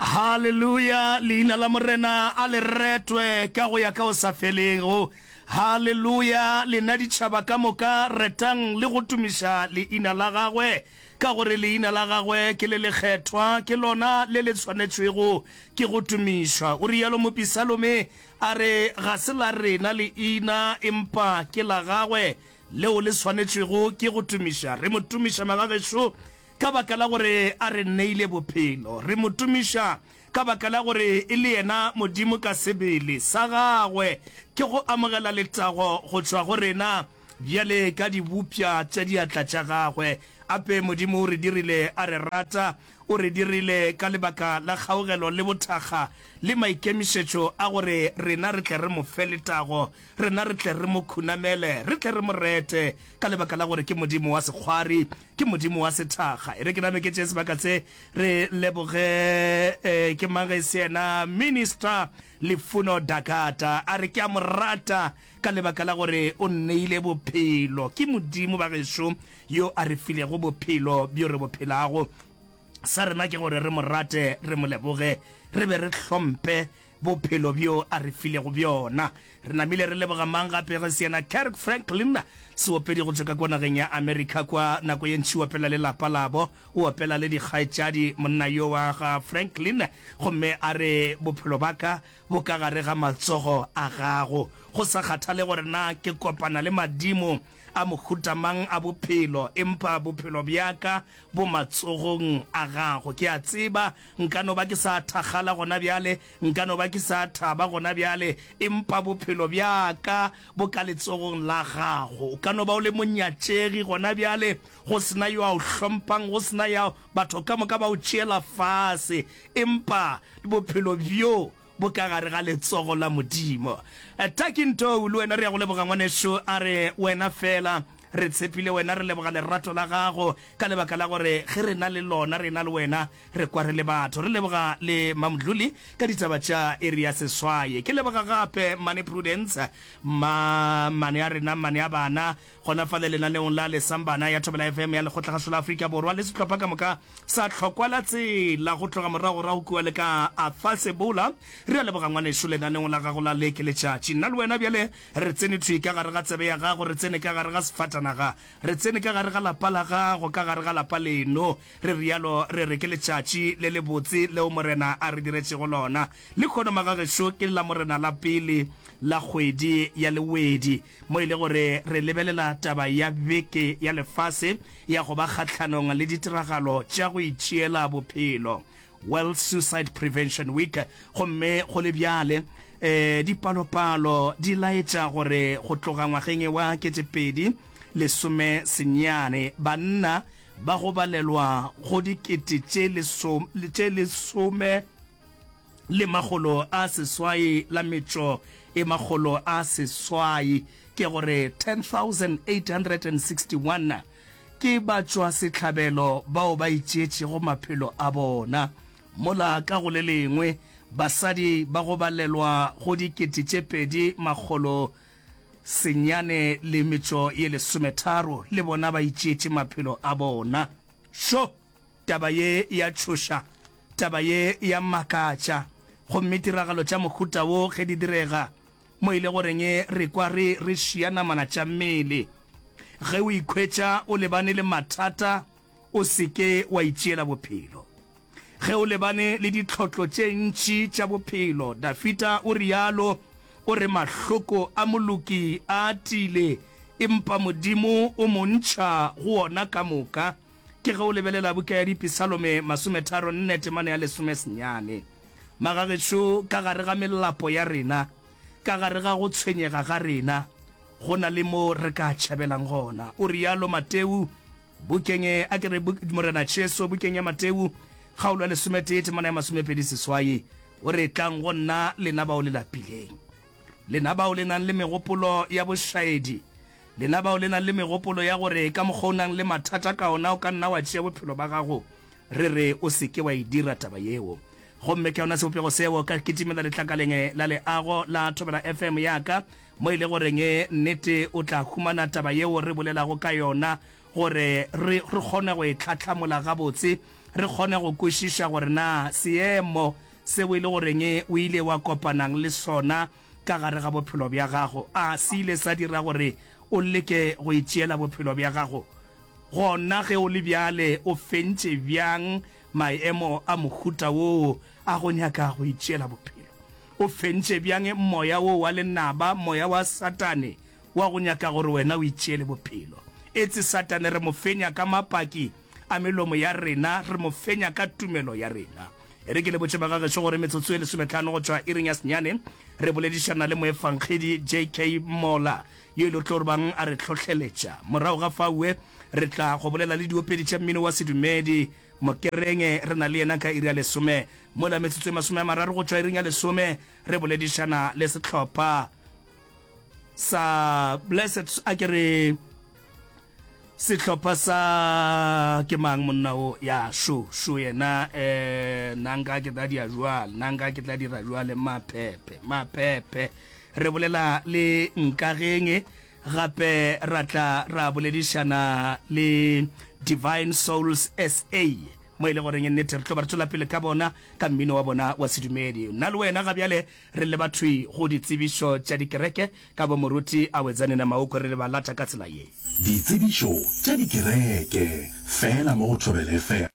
haleluya leina la morena a le retwe ka go ya ka o sa felego haleluya lena ditšhaba ka moka retang le go tumiša leina la gagwe ka gore leina la gagwe ke le lekgethwa ke lona le le tshwanetšwego ke go tumišwa o rialo mopisalome a re ga se la rena leina empa ke la gagwe leo le swanetšwego ke go tumiša re mo tumiša magagešo ka baka la gore a re neile bophelo. Re mo tumiša ka baka la gore e le yena Modimo ka sebele sa gagwe. Ke go amogela letago go tšwa go rena bjale ka dibopša tša diatla tša gagwe. Ape Modimo o re dirile a re rata. O re dirile ka lebaka la kgaogelo le bothakga le maikemišetšo a gore rena re tle re mo fe letago, rena re tle re mo khunamele, re tle re mo rete ka lebaka la gore ke Modimo wa sekgwari. ke modimo wa sethakga. E re ke name ke tšee sebaka se, re leboge, ee, ke mang ge e se yena Minister Lifuno Dakata. A re ke a mo rata ka lebaka la gore o nneile bophelo. Ke Modimo, bagešo, yo a re filego bophelo bjo re bo phelago. Sa rena ke gore re mo rate, re mo leboge, re be re hlomphe, Bophelo bjo a re filego bjona. Re namile re leboga mang gape ge se yena Kirk Franklin, seopedi go tšwa ka kwa nageng ya America kwa, nako ye ntši o opela le lapa labo, o opela le dikgaetšadi, monna yo wa ga Franklin, gomme a re, Bophelo bja ka bo ka gare ga matsogo a gago. Go sa kgathale gore na ke kopana le madimo a mohuta mang a bophelo, empa bophelo bja ka bo matsogong a gago. Ke a tseba Nka no ba ke sa thakgala gona bjale, nka no ba ke sa thaba gona bjale, empa bophelo bja ka bo ka letsogong la Gago. O ka no ba o le monyatšegi gona bjale, go se na yo a O hlompang, go se na ya, batho ka moka ba O tšeela fase, empa bophelo bjo bo ka gare ga letsogo la Modimo. Takin Tou, le wena re ya go leboga ngwanešu, a re, Wena fela, re tshepile Wena, re leboga lerato la Gago, ka lebaka la gore ge re na le lona, re na le Wena, re kwa re le batho. Re leboga le Mamdluli ka ditaba tša iri ya seswaye. Ke leboga gape Mmane Prudence, mma, mmane a rena, mmane a bana, Gona fale lenaneong la Lesambana ya Thobela FM ya Lekgotlakgašo la Afrika Borwa le sehlopha ka moka sa Tlhokwa la Tsela go tloga morago ra go kua le ka Arthur Sebola. Re a leboga ngwanešu lenaneong la gago la leke letšatši. Nna le wena bjale re tsene thwi ka gare ga tsebe ya gago, re tsene ka gare ga sefatanaga, re tsene ka gare ga lapa la gago, ka gare ga lapa leno. Re realo re re ke letšatši le le botse leo Morena a re diretšego lona. Lekhono magagešo ke la Morena la pele la kgwedi ya Lewedi. mo e le gore re lebelela taba ya Beke ya Lefase ya go ba Kgahlanong le Ditiragalo tša go Itšeela Bophelo, World Suicide Prevention Week, gomme go le bjale e, dipalopalo di laetša gore go tloga ngwageng e wa ketepedi lesome senyane banna ba go balelwa go dikete tše lesome le makgolo a seswai la metšo e makgolo a seswai, ke go re 10,861, ke batšwasehlabelo bao ba itšeetšego maphelo a bona. Mola ka go le lengwe basadi ba go balelwa go dikete tše pedi makgolo senyane le metšo ye lesometharo le bona ba itšeetše maphelo a bona. Šo! Taba ye e a tšhoša, taba ye e a makatša. Gomme tiragalo tša mohuta wo ge di direga, mo e le goreng re kwa re re šia namana tša mmele. Ge o ikhwetša o lebane le mathata, o se ke wa itšeela bophelo. Ge o lebane le ditlhotlo tše ntši tša bophelo, Dafita o realo, o re, Mahloko a moloki a atile, empa Modimo o mo ntšha go ona ka moka. Ke ge o lebelela buka ya Dipisalome masometharo nne temana ya lesome senyane. Magagešo, ka gare ga melapo ya rena, ka gare ga go tshwenyega ga rena, go na le moo re ka tšhabelang gona. O realo Mateu, bukeng, a ke re, Morena Jesu, bukeng ya Mateu, kgaolo ya lesometee temana ya masomepedi seswai, o re, Tlang go nna, lena bao le lapileng. Lena bao le nang le megopolo ya bošaedi, lena bao le nang le megopolo ya gore ka mokgwa o nang le mathata ka ona o ka nna wa tšea bophelo ba gago, re re o se ke wa e dira taba yeo. Gomme ke yona sebopego seo ka kitimela letlakaleng la leago la Thobela FM ya ka, mo e le goreng nnete o tla humana taba yeo re bolelago ka yona gore re kgone go e tlhahlamola gabotse, re kgone go kwešiša gore na seemo seo e le goreng o ile wa kopanang le sona ka gare ga bophelo bja gago a se ile sa dira gore o leke go itšeela bophelo bja gago. Gona ge o le bjale o fentše bjang maemo a mohuta woo a go nyaka go itšeela bophelo? O fentše bjang moya woo wa lenaba, moya wa Satane wa go nyaka gore wena o itšeele bophelo. Etse Satane re mo fenya ka mapaki a melomo ya rena, re mo fenya ka tumelo ya rena. E re ke le botše bagagešo gore metsotso e lesometlhano go tšwa iring ya senyane re boledišana le moefangedi JK Mola yo e lo tlo bang a re hlohleletša. Morago ga faue re tla go bolela le diopedi tša mmino wa sedumedi Mokerenge re na le yena ka iri ya lesome. Mola metsotso e masome a mararo go tšwa iring ya lesome re boledišana le sehlopha sa blessed a ke re sehlopha sa ke mang monna o ya sho sho yena eh nanga ke tla dia jwal nanga ke tla dira jwale maphephe maphephe re bolela le nkageng gape ra tla ra boledišana le divine souls sa mo e le goreng nnete re tlo ba re tswela pele ka bona ka mmino wa bona wa sedumedi nna le wena ga bjale Re leba thwi go ditsebišo tša dikereke ka bo Moruti Awedzanena Maukwe re ba lata ka tsela ye. Ditsebišo tša dikereke fela mo go Thobela FM.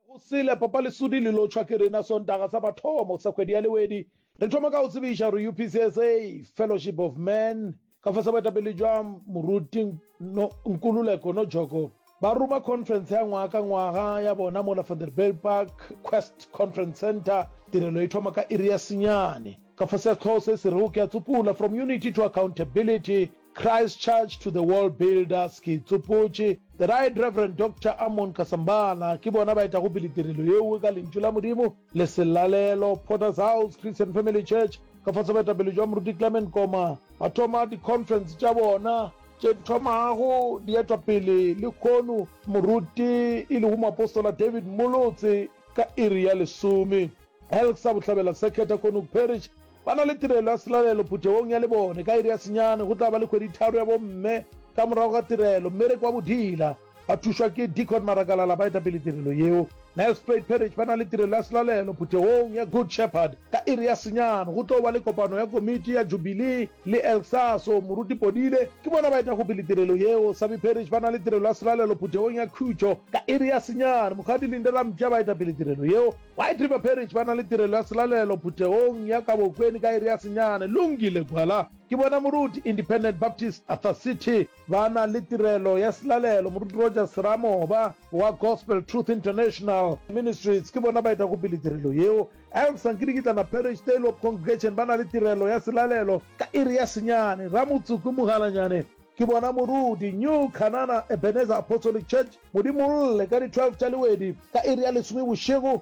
Go sele Papa Lesudi le lotšhwa ke rena Sontaga sa mathomo sa kgwedi ya Lewedi. Re thoma ka go tsebiša gore UPCSA, Fellowship of Man, Ka fase boetapele jwa Moruti no, Nkululeko Nojoko ba ruma khonferense ya ngwaga ka ngwaga ya bona mola Vanderbijlpark Quest Conference Centre. Tirelo e thoma ka iri ya senyane. Ka fase ya sehlooho se se rego Ke a Tsopula, From Unity to Accountability, Christchurch to the World Builders, ke itsopotše The Right Reverend Doctor Amon Kasambala ke bona ba etago pele tirelo yeo ka Lentšu la Modimo. Leselalelo, Potter's House Christian Family Church, ka fase boetapele bja Moruti Clement Koma, ba thoma di-conference tša bona tše di thomago di etwa pele lekhono Moruti e lego moapostola David Molotse ka iri ya lesome. Elk sa Bohlabela Circuit ya Konook Parish ba na le tirelo ya selalelo phuthegong ya lebone ka iri ya senyane. Go tla ba le kgweditharo ya bomme ka morago ga tirelo, mmereko wa bodila. Ba thušwa ke Deacon Marakalala, baetapele tirelo yeo. Nelspruit Parish ba na le tirelo ya selalelo phuthegong ya Good Shepherd ka iri ya senyane. Go tlo ba le kopano ya komiti ya Jubilee le Elsaso. Moruti Podile ke bona baetagopele tirelo yeo. Sabi Parish ba na le tirelo ya selalelo phuthegong ya Khutšo ka iri ya senyane. Mokgadi Linde Rampša baetapele tirelo yeo. White River Parish ba na le tirelo ya selalelo phuthegong ya Kabokweni ka iri ya senyane. Lungile Gwala ke bona moruti Independent Baptist Arthur City. Ba na le tirelo ya selalelo. Moruti Rogers Seramoba wa Gospel Truth International Ministries ke bona baetagopele tirelo yeo. Elsa Nkirikitlana Parish Tale of Congregation ba na le tirelo ya selalelo ka iri ya senyane. Ramotsuku Mogalanyane ke bona moruti. New Canana Ebenezer Apostolic Church Modimolle ka di 12 tša lewedi ka iri ya lesome bošego.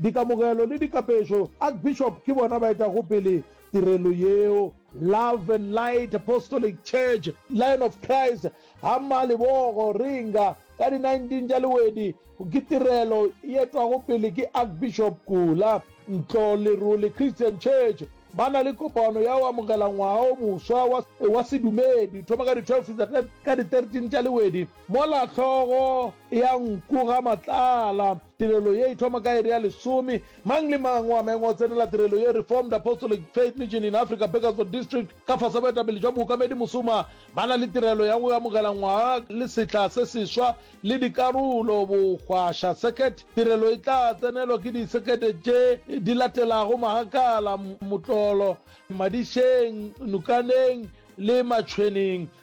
Dikamogelo le dikapežo, Archbishop ke bona ba etago pele tirelo yeo. Love and Light Apostolic Church, Lion of Christ, Hama Lebogo, Ringa, ka di 19 tša Lewedi, ke tirelo e etwago pele ke Archbishop Kula. Ntlo Lerole Christian Church ba na le kopano ya go amogela ngwaga o moswa wa, wa sedumedi, thoma ka di 12 fihla ka, ka di 13 tša Lewedi, mola hlogo ya nku ga Matlala. Tirelo ye e thoma ka iri ya lesome. Mang le mang o amengwa go tsenela tirelo ye. Reformed Apostolic Faith Mission in Africa, Burgersdorp District, ka fase boetapele jwa mookamedi Musuma, ba na le tirelo ya go amogela ngwaga le sehla se seswa le dikarolo bogwaša circuit. Tirelo e tla tsenelwa ke di circuit tše di latelago, Magakala, Motlolo, Madišeng, Nukaneng le Matšhweneng.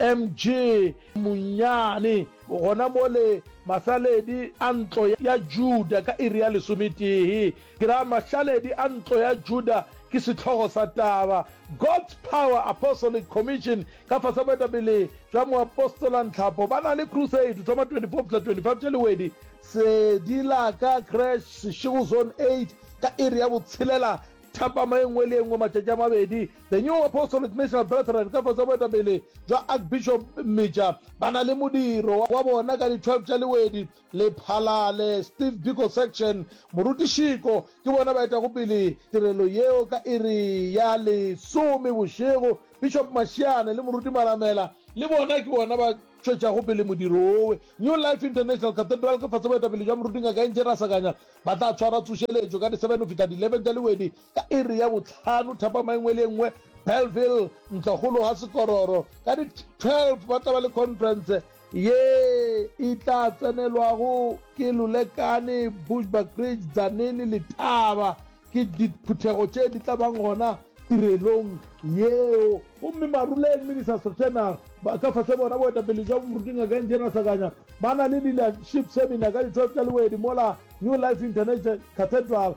MG Munnyane, gona mo le mahlaledi a ntlo ya Juda ka iri ya lesometee. Ke ra mahlaledi a ntlo ya Juda ke sehlogo sa taba. God's Power Apostolic Commission ka fase ga boetapele bja moapostola Nhlapo ba na le crusade go thoma 24 fihla 25 Tšhaliwedi, Sedi la ka Creche, Seshego Zone 8, ka iri ya botshelela thapama e nngwe le e nngwe matšatši a mabedi The New Apostolic National Brethren ka fase ga boetapele bja Archbishop Mmeja ba na le modiro wa bona ka di 12 tša Lewedi, Lephalale, Steve Biko Section, Morutišiko, ke bona ba etago pele tirelo yeo ka iri ya lesome bošego, Bishop Mashiane le Moruti Malamela, le bona ke bona ba tšwetšago pele modiro wo, New Life International Cathedral ka fase ga boetapele bja Moruti Ngaka Eng Tše Rasakanya ba tla tshwara tsošeletšo ka di 7 go fihla di 11 tša Lewedi, Ka iri ya bohlano thapama e nngwe le e nngwe, Bellville, Ntlokgolo ga Sekororo, ka di 12 ba tla ba le khonferense ye e tla tsenelwago ke Lulekane, Bushbuckridge, Tzaneen le Thaba. Ke diphuthego tše di tla bang gona tirelong yeo. Gomme Maruleng, Minister Strotenaar, ba ka fase bona boetapele bja moruti Ngaka Engineer Sakanya, ba na le Leadership Seminar ka di 12 tša Lewedi mola New Life International Cathedral.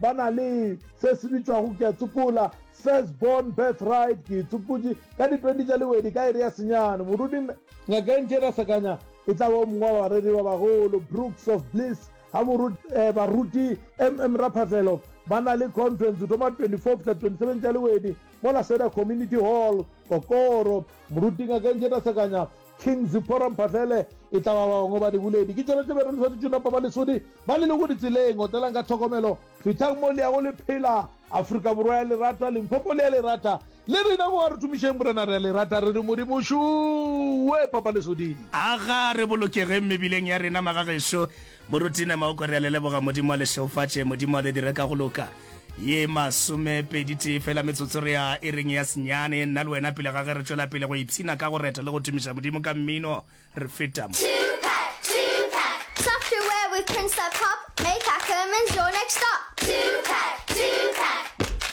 Ba na le se se bitšwago ke a tsopola, first born birthright, ke e tsopotše ka di 20 tša lewedi ka iri ya senyane. Morudi Mme. Ngaka Engineer Sakanya e tla ba o mongwe wa bareri ba bagolo. Brooks of Bliss ga Morut, eh, Baruti MM Raphafelo ba na le conference go thoma 24 fihla 27 tša lewedi mola Seda Community Hall, Kokoro. Moruti Ngaka Engineer Sakanya King Zipporah Mphahlele e tla ba ba bangwe ba diboledi. Ke tšweletše bjalo le swanetše napa ba lesodi ba le lego ditseleng. Otelang ka tlhokomelo, fithang mo le yago le phela. Afrika Borwa ya lerata, Limpopo le ya lerata. Le rena mo a re tumišeng Morena re a le rata re re Modimo šuwe papa lesoding. Aga re bolokegeng mebileng ya rena magagešo Moruti nama o ko rea le leboga Modimo a le šeufatše Modimo a le dire ka go loka Ye masome pedi tee fela metsotso rea e reng ya senyane nna le wena pele ga ge re tšwela pele go ipshina ka go reta le go tumiša Modimo ka mmino re feta mo.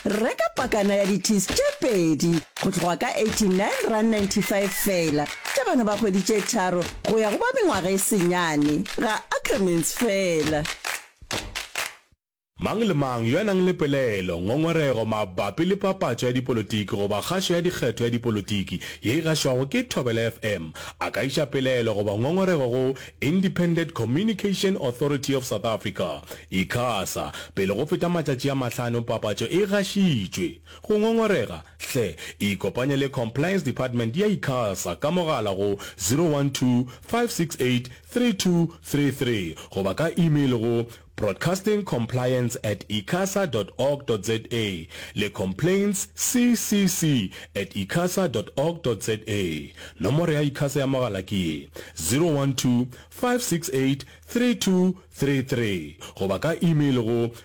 Reka pakana ya di-tees tše pedi. Go tloga ka 89 rand 95 feela tša bana ba kgwedi tše tharo go ya go ba mengwaga e senyane, ga Ackermans feela. Mang le mang yo a nang le pelaelo, ngongorego mabapi le papatšo ya dipolotiki goba kgašo ya dikgetho ya dipolotiki ye e gašwago ke Thobela FM a ka iša pelaelo goba ngongorego go Independent Communication Authority of South Africa, Icasa, pele go feta matšatši a mahlano papatšo e gašitšwe. Go ngongorega? Hle ikopanye le Compliance Department ya Icasa ka mogala go 012-568-3233 goba ka email go broadcastingcompliance at icasa dot org dot za le complaints ccc at icasa dot org dot za. Nomoro ya Icasa ya mogala ke ye, 012-568-3233 goba ka email go